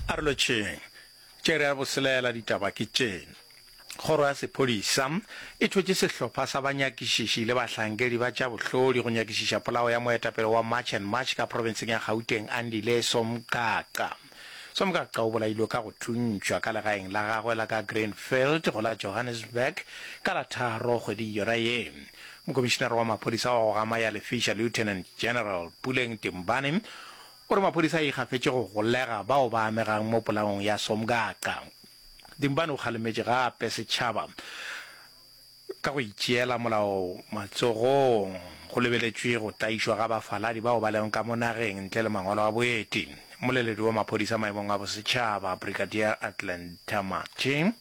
A re lotšheng, tše re a bo selaela ditaba ke tše, Kgoro ya Sephodisa e thwetše sehlopha sa banyakišiši le bahlankedi ba tša bohlodi go nyakišiša polao ya moetapele wa March and March ka profenseng ya Gauteng Andile Somgaqa. Somgaqa o bolailwe ka go thuntšwa ka legaeng la gagwe la ka Greenfield go la Johannesburg ka la tharo kgweding yona ye. Mokomišinara wa Maphodisa wa go Gama ya Lefiša Lieutenant General Puleng Timbane o re maphodisa a ikgafetše go golega bao ba amegang mo polaong ya Somgaqa. Timbane o kgalemetše gape setšhaba ka go itšeela molao matsogong go lebeletšwe go tlaišwa ga bafaladi bao ba lego ka mo nageng ntle le mangwalo a boeti. Mmoleledi wa maphodisa maemong a bosetšhaba Brigadier Atlanta Mathe,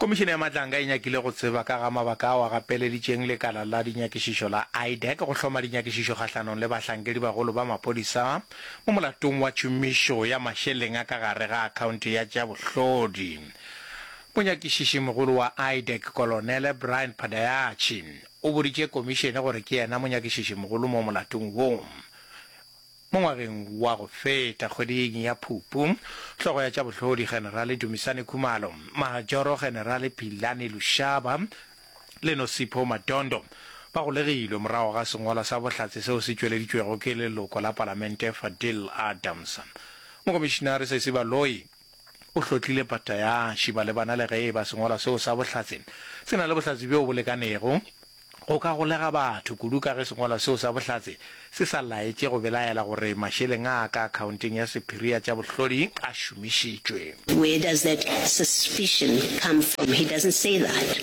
Komišene ya Matlanga e nyakile go tseba ka ga mabaka ao a gapeleditšeng lekala la dinyakišišo la IDAC go hloma dinyakišišo kgahlanong le bahlankedibagolo ba maphodisa mo molatong wa tšhomišo ya mašeleng a ka gare ga akhaonte ya tša bohlodi. Monyakišiši-mogolo wa IDAC, Kolonele Brian Phadayachi, o boditše komišene gore ke yena monyakišiši-mogolo mo molatong wo. Mo ngwageng wa go feta, kgweding ya Phupu, Hlogo ya tša Bohlodi Generale Dumisani Khumalo, Majoro Generale Philani Lushaba le Nosipho Madondo ba golegilwe morago ga sengwalwa sa bohlatse seo se tšweleditšwego ke leloko la Palamente Fadil Adams. Mokomišinare Sesi Baloyi O hlotlile pata ya šiba le bana le ge e ba sengwalwa seo sa bohlatse se na le bohlatse bjoo bo lekanego go ka golega batho, kudu ka ge sengwalwa seo sa bohlatse se sa laetše go belaela gore mašeleng a ka akhaonteng ya sephiri ya tša bohlodi a šomišitšwe. Where does that suspicion come from? He doesn't say that.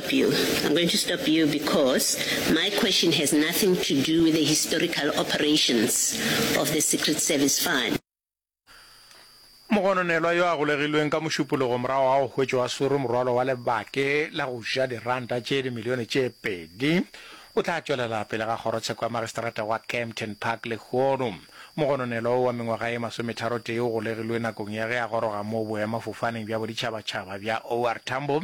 you. I'm going to stop you because my question has nothing to do with the historical operations of the Secret Service Fund. Mogononelwa yo a golegilweng ka Mošupologo morago ga go hwetšwa a swerwe morwalo wa lebake la go ja diranta tše dimilione tše pedi o tla tšwelela pele ga kgorotsheko ya magistrata wa Kempton Park lehono. Mogononelwa wo wa mengwaga e masometharotee o golegilwe nakong ya ge a goroga moo boemafofaneng bja boditšhabatšhaba bja OR Tambo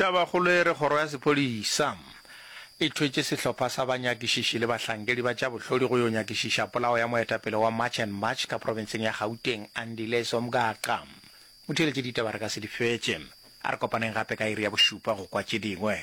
Tabakgolo e re kgoro ya sephodisa e thwetše sehlopha sa banyakišiši le bahlankedi ba tša bohlodi go yo nyakišiša polao ya moetapele wa March and March ka profenseng ya Gauteng, Andile Somgaqa. Motheeletše ditaba re ka se di fetše. A re kopaneng gape ka iri ya bošupa go kwa tše dingwe.